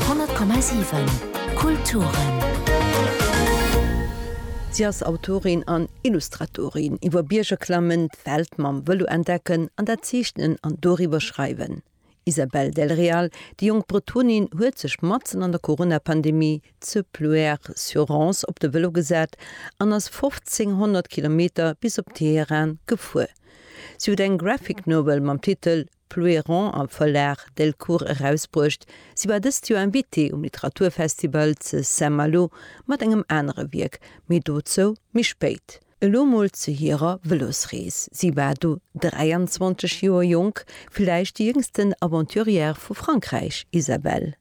100,7 Kulturen. Si ass Autorin an Illustratorin. Iwwer Bierger klammen, d'Welt mam Vëlo entdecken an dat Zeechnen an doriwwer schreiwen. Isabelle Del Real, déi jonk Bretonin, huet sech matzen an der Corona-Pandemie zu Pluerre-sur-Rance op de Vëlo gesat an ass 1.500 Kilometer bis op Teheran gefuer. Si huet eng Graphic Novel mam Titel Flueron a Verlag Delcourt erausbruecht. Si war dëst Joer Invitée um Literaturfestival ze Saint-Malo mat engem anere Wierk, mee dozou méi spéit. Elo mol zu hirer Vëlosrees, Si war do 23 Joer jonk, villäicht déi jéngsten Aventurière vu Frankräich, Isabelle.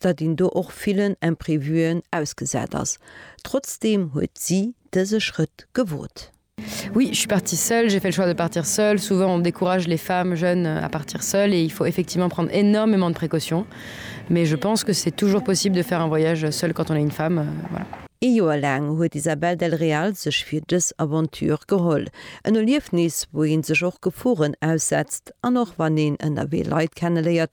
datt een do och villen Imprévuen ausgesat ass. Trotzdeem huet si dëse Schrëtt gewot. Oui, je suis partie seule, j'ai fait le choix de partir seule. Souvent on décourage les femmes jeunes à partir seules et il faut effectivement prendre énormément de précautions, mais je pense que c'est toujours possible de faire un voyage seule quand on est une femme. Voilà. Ee Joer laang huet d'Isabel del Real sech fir dës Aventure geholl. En Erliefnis, wou ee sech och Geforen aussetzt an och wann een ënnerwee Leit kenneléiert,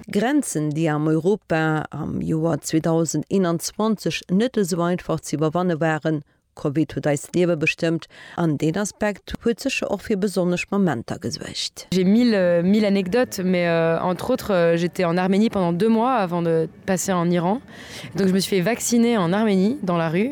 Grenzen, déi am Europa am Joer 2021 net esou einfach ze iwwerwanne waren. Covid huet eist Liewe bestëmmt, an deen Aspekt huet sécher och fir besonnesch Momenter gesuergt. J'ai mille mille anecdotes mais entre autres j'étais en Arménie pendant deux mois avant de passer en Iran donc je me suis fait vacciner en Arménie dans la rue.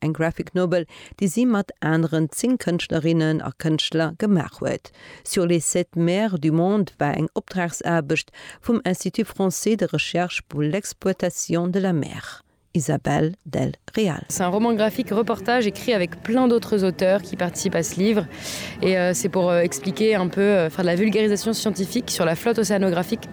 Eng Graphic Novel, déi si mat aneren 10 Kënschtlerinnen a Kënschtler gemaach huet. Sur les sept mers du monde war eng Opdragsaarbecht vum Institut français de recherche pour l'exploitation de la mer, Isabelle del Real. C'est un roman graphique reportage écrit avec plein d'autres auteurs qui participent à ce livre et c'est pour expliquer un peu, faire de la vulgarisation scientifique sur la flotte océanographique.